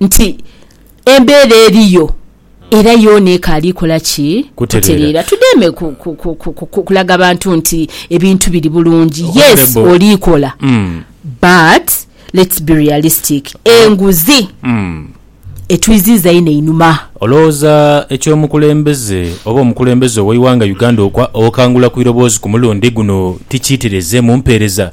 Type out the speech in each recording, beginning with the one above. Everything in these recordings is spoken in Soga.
nti embeera eriyo era yoona ekaali kola ki? Kutereera. Tudheeme kulaga bantu nti ebintu biri bulungi. Yes, oli kola but let's be realistic. Enguzi etwiziiza inho einhuma. Olowooza eky'omukulembeze oba omukulembeze ow'eighanga Uganda okangula ku iroboozi ku mulundi guno ti kiitereeze mu mpeereza?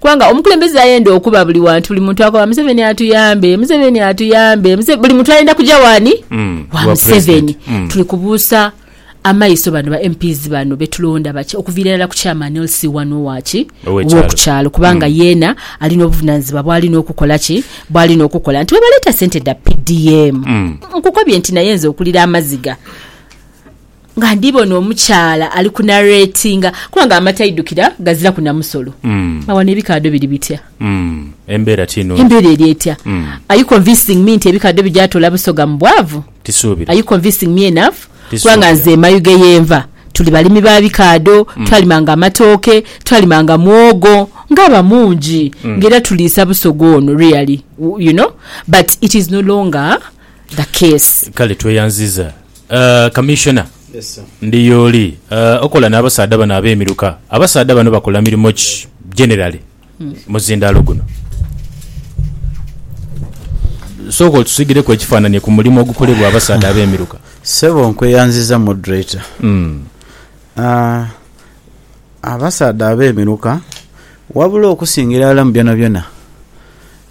Kubanga omukulembeze ayenda okuba buli wantu buli muntu akoba museveni atuyambe museveni atuyambe buli muntu ayenda kuja wani mm. wa museveni mm. tuli kubuusa amaiso bano ba mps bano betulonda baki okuviira irala ku chairman lc wani owaki owokukyalo kubanga mm. yeena alina obuvunanyizibwa bwalina okukola ki bwalina okukola nti webaleeta sente da pdm mm. nkukobye nti naye nze okulira amaziga Nga ndibona omukyala ali ku narratinga kubanga amata aidukira gaziraku na musolo. Awo wano ebikaadho biri bitya? Embeera ti nungi. Embeera eri etya? Are you convincing me nti ebikaadho bigya toola Busoga mu bwavu? Tisuubira. Are you convincing me enough? Kubanga Tisuubira. nze e Mayuge ye nva tuli balimi ba bikaadho, twalimanga amatooke, twalimanga mwogo nga abamungi nga era tuliisa Busoga ono really u- you know but it is no longer the case. Kale tweyanziza. Commissioner ndi yooli okola nabasaadha bano abemiruka, abasaadha bano bakola mirimo ki generally muzindalo guno? Sooka otusigireku ekifananye ku mulimo ogukolebwa abasaadha abemiruka. Sebo nkweyanziza moderator. Mm. Uh, abasaadha abemiruka wabula okusingira ala mubyona byona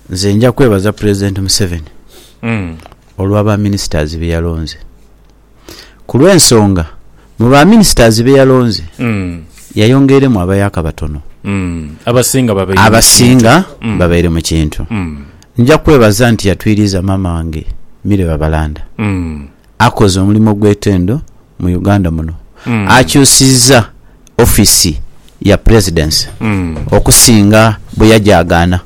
nze nja kwebaza president Museveni mm. olwa ba ministers be yalonze. Ku lw'ensonga mu ba ministers be yalonze yayongeiremu abayaka batono. Abasinga babaire mu kintu. Nja kwebaza nti yatwiriiza maama wange Milly Babalanda. Akoze omulimo ogw'etendo mu Uganda muno. Akyusizza office ya presidency okusinga bweyajagaana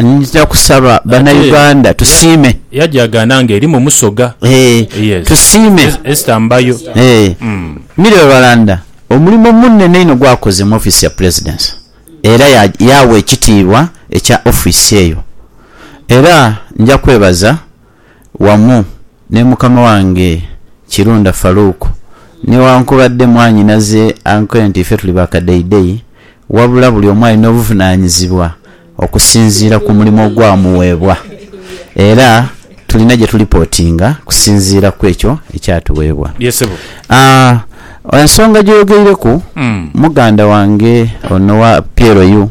nja kusaba bana Uganda tusiime yajagaana nga erimu musoga eeh tusiime Esther Mbayo eeh Milly Rwalanda omulimo munene inho gwakoze mu office ya presidency era yaawa ekitiibwa ekya office eyo era nja kwebaza. wamu ni mukama wange Kirunda Farouk, newankubadde mwanyinaze ankoye nti ffe tuli ba kadeidei wabula buli omu alina obuvunaanyizibwa okusinziira ku mulimu ogwamuweebwa era tulina gye tulipotinga kusinziira ku ekyo ekyatuweebwa. Ye ssebo. Aah, ensonga gy'oyogeireku muganda wange ono owa PLU,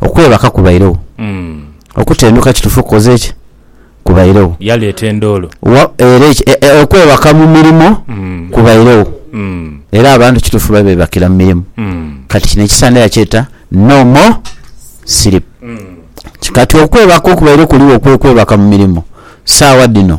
Okwebaka kubairegho. Okutenduka kitufu kukoze ki? Kubairegho. Yaleeta endoolo. Wa, era eki, e, e, okwebaka mu mirimo kubairegho. Era abantu kitufu baali bebakira mu mirimu. Kati kino ekisande yakyeta No More Sleep. Kati okwebaka okubairegho kuligho kwekwebaka mu mirimo saawa dhino.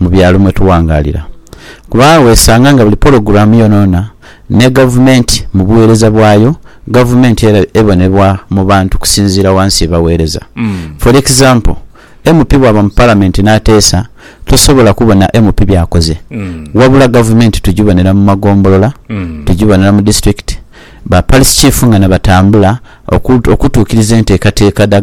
mu byalo mwe tuwangaalira kuba agho wesanga nga buli pologulaamu yoonayoona ne Gavumenti mu bugheereza bwayo, Gavumenti era ebonebwa mu bantu okusinziira wansi ye bagheereza. For example, MP bwaba mu Palamenti n'ateesa, tosobola kubona MP by'akoze wabula Gavumenti tugibonera mu magombolola, tugibonera mu disiturikiti, ba Parish Chief nga nabatambula okutuukiriza enteekateeka dha.